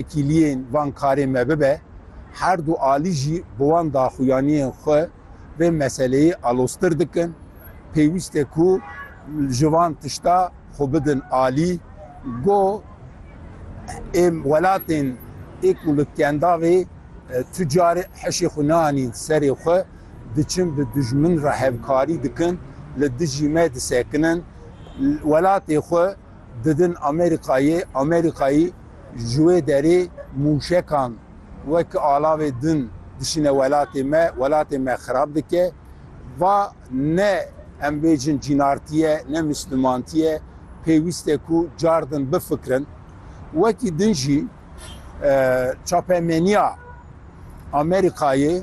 Tekîliyên van karên me bibe, her du alî jî bi wan daxuyaniyên xwe vê meseleyê aloztir dikin. Pêwîst e ku ji van tişta xwe bidin alî. Got, Êm welatên ê ku li kendavê tu carê heşê xwe neanîn serê xwe, diçin bi dijmin re hevkarî dikin, li dijî me disekinin. Welatê xwe. Didin Amerîkayê, Amerîkayî ji wê derê mûşekan wek alavê din dişîne welatê me, welatê me xirab dike. Va ne em bêjin cînartî ye, ne mislûmantî ye, pêwîst e ku car din bifikirin. Wekî din jî. çapemeniya Amerîkayê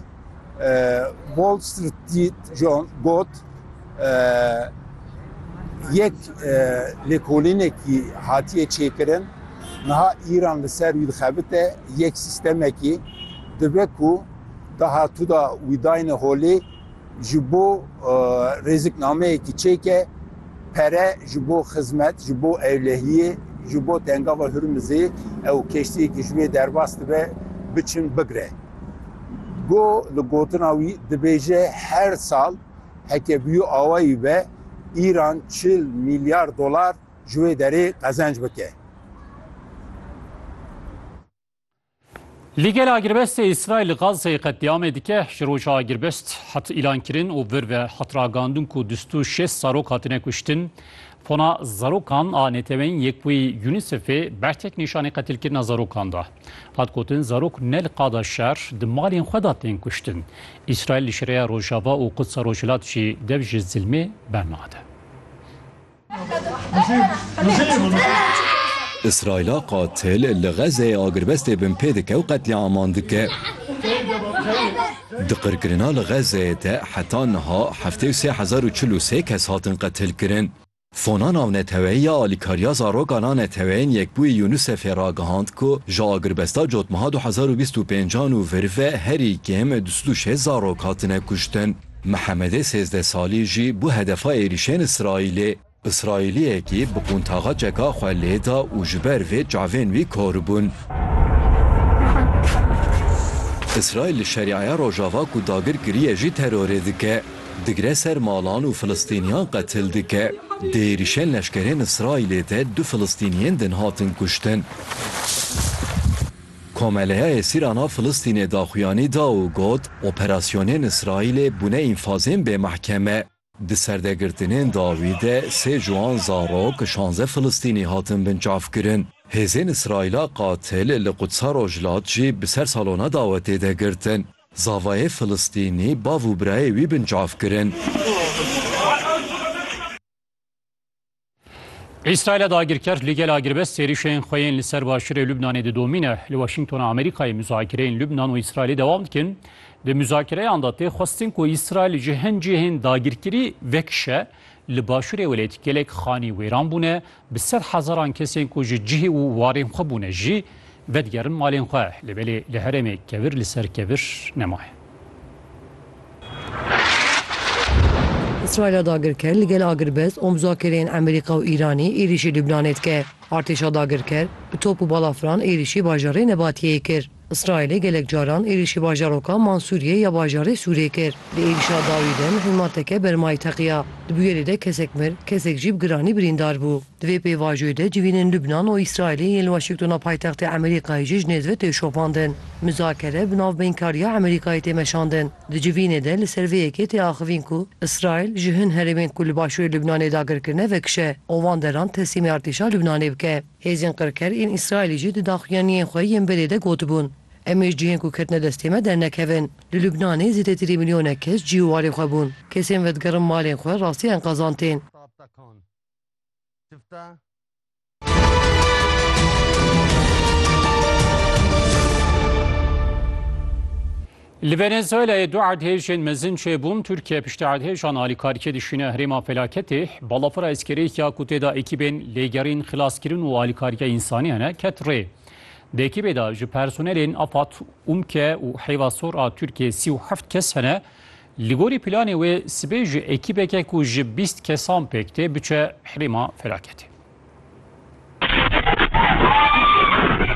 Wall Street Journal got yek lêkolînekî hatiye çêkirin niha Îran li ser wî dixebite yek sîstemekî dibe ku dahatû da wî dayne holê ji bo rêziknameyekî çêke, pere ji bo xizmet, ji bo ewlehiyê, ji bo tengava Hurmizê ew keştiyekî ji wê derbas dibe biçin bigre. Go li gotina wî dibêje her sal heke bûyî awayî be Îran çil mîlyar dolar ji wê derê qezenc bike. Lîgel agirbestê Îsraîl li Gazeyê qetlîamê dike, ji roja agirbest hat îlankirin û vir ve hat ragandin ku du stû şêst zarok hatine kuştin. Fona zarokan a neteweyîn yek wî UNICEFê bertek nîşanî qetilkirina zarokan da. Hat gotin zarok ne li qada şer di malên xwe de tên kuştin. Îsraîl li şireya Rojava û Qudsa Rojhilat jî dev ji zilmê bernade. Îsraîla qatil li Xezzeyê agirbestê binpê dike û qetlîaman dike. Di qirkirina li Xezzeyê de heta niha heftê û sê hezar û çil û sê kes hatin qetilkirin. Sona Navneteweyî ya Alîkariya Zaroka na Neteweyên Yekbûyî UNICEF'ê ragihand ku ji agirbesta cotmeha du hezar û bîst û pênc an û vir ve herî kêm du sed û şêst zarok hatine kuştin. Mihemedê sêzdeh salî jî bû hedefa êrîşên Îsraîlê. Îsraîliyekî bi qûntaxa çeka xwe lê da û ji ber vê çavên wî koribûn. Îsraîl li Şerîaya Rojava ku dagir kiriye jî terorê dike. Digre ser malan û Filistîniyan qetil dike. Di êrîşên leşkerên Îsraîlê de du Filistîniyên din hatin kuştin. Komeleyayê Sîrana Filistînê daxuyanî da û got, Operasyonên Îsraîlê bûne înfazên bê mehkeme. Di serdegirtinên dawî de sê ji wan zarok, şanze Filistînî hatin binçavkirin. Hêzên Îsraîla qatil li Qudsa Rojhilat jî bi ser salona dawetê de girtin. Zavayê Filistînî bav û birayê wî binçavkirin. Îsraîlê dagirker li gel agirbest sêrîşên xwe yên li ser başûrê Lubnanê didomîne. Li Washingtona Amerîkayê muzakireyên Lubnan û Îsraîlê dewam dikin. Di muzakireyan de tê xwestin ku Îsraîl ji hin cihên dagirkirî vekişe. Li başûrê welêt gelek xanî wêran bûne, bi sed hezaran kesên ku ji cihê û warên xwe bûne jî vedigerin malên xwe. Li belê li herêmê kevir li ser kevir nemaye. Îsraîla dagirker li gel agirbest û muzakireyên Amerîka û Îranê êrîşî Lubnanê dike. Artêşa dagirker bi top û balafiran êrîşî bajarê Nebatiyeyê kir. Îsraîlê gelek caran êrîşî bajaroka Mansûriyê ya bajarê Sûrê kir. Di êrîşa dawî de mihilmateke bermayî teqiya. Di bûyerê de kesek mir, kesek jî bi giranî birîndar bû. Di vê pêvajoyê de civînên Lubnan û Îsraîlê yên li Washingtona paytextê Amerîkayê jî ji nêz ve tê şopandin. Muzakere bi navbeynkariya Amerîkayê tê meşandin. Di civînê de li ser vê yekê tê axivîn ku Îsraîl ji hin herêmên ku li başûrê Lubnanê dagir kirine vekişe û van deran teslîmê artêşa Lubnanê bike. Hêzên qirker ên Îsraîlê jî di daxuyaniyên xwe yên berê de gotibûn, Em ê ji cihên ku ketine destê me dernekevin. Li Lubnanê zêdetirî milyonek kes cî û warê xwe bûn. Kesên vedigerin malên xwe rastî enkazan tên. Çifta Li Venezuelayê du erdhêjên mezin çêbûn, Tirkiye piştî erdhêjan alîkarkê dişîne herêma felaketê. Balafira eskerêya ku tê de ekîbên lêgerîn, xilaskirin û alîkariya însanî hene ket rê. Di ekîbê de ji personelên Afad, UMKE û Heyva Sor a Tirkiyê sî û heft kes hene. Li gorî planê wê sibê ji ekîbeke ku ji bîst kesan pêk tê biçe Herêma Felaketê.